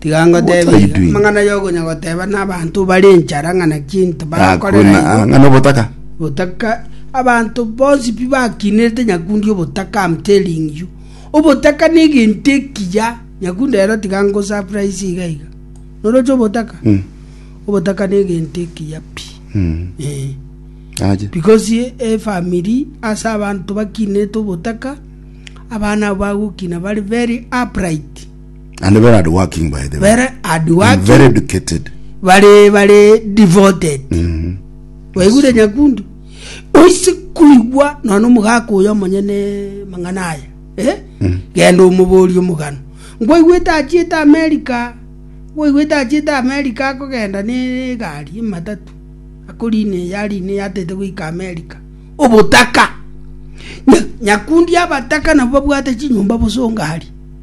Tiga ngoteebie ere, amang'ana y'okonya goteeba nabaanto bare enchara ng'a naki ntibakorera Hakuna igo, ang'ana obotaka. obotaka, abanto bonsi pi bakiinerete nyakundi obotaka, am telling you. Obotaka negento ekiya, nyakundi rero tiga ngosurprise iga iga. Noroche obotaka? Mm. Obotaka negento ekiya pi. Mm. Eh. Aje. Because efamiri ase abanto bakiinerete obotaka, abana abo bagokina bari very upright. And very hardworking, by the way. very hard And working very educated. bare bare devoted Mm. waigure nyakundu oise kuigwa nona omogaka oyo omonyene mang'ana aya eh? genda omobori omogano ngwaigwete achiete amerika ngwaigwete achiete amerika akogenda ne egari ematatu akorine yarine yatete goika amerika obotaka Nya- nyakundi abataka nabo babwate chinyomba bosongari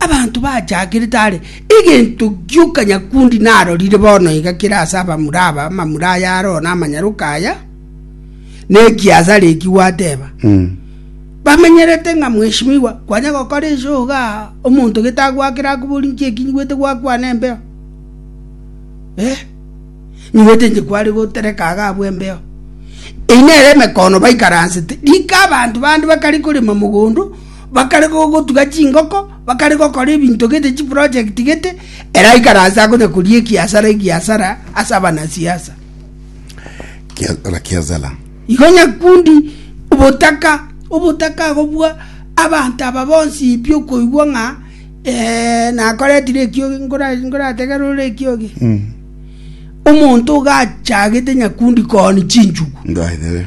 Abanto bachakerete are egento gioka nyakundi narorire bono iga kere ase abamura aba, amamura aya are one amanyaroka aya, na ekiasare eki gwateba. Bamenyerete ng'a mweshimiwa, kwanya gokora ense oga omonto gete agwakere akobori nki eki nyigwete gwakwana embeo. Eh, nyigwete inche kware gotereka iga abwo embeo. Eyio nere emekono baikaransete. Rika abanto bande bakare korema mogondo, Bakarega ogotuga chingoko, bakarega gokora ebinto gete, chiproject gete, ere aikaranse akonya koria egiasara egiasara ase abanasiasa. Kia- Rakiazala. Igo nyakundi obotaka obotaka agobua abanto aba bonsi pi okoigwa ng'a eh, nakoretire ekiogi nkora- nkorategere ore ekiogi Mm. omonto oga achagete nyakundi kooni chinchugu Ndwaethere.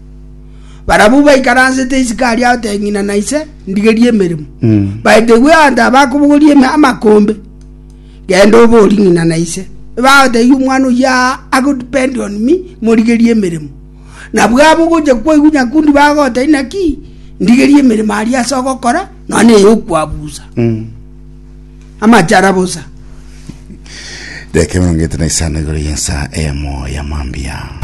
Barabwo baikaransete isiko aria agotebi ng'ina na ise, Ndigerie emeremo. Baetegwe abanto aba bakobogoria eme- amakombe, Genda obori ng'ina na ise, Ebagotebi omwana oyio aa agodepend on me, morigerie emeremo. Nabwo aba ogocha kwaigwa nyakundi bagotebi naki, Ndigerie emeremo aria ase ogokora, nonya ey'okwabusa. Amachara bosa. Dakika emerongo ete na isano igoro y'ensa eyemo ya mambia.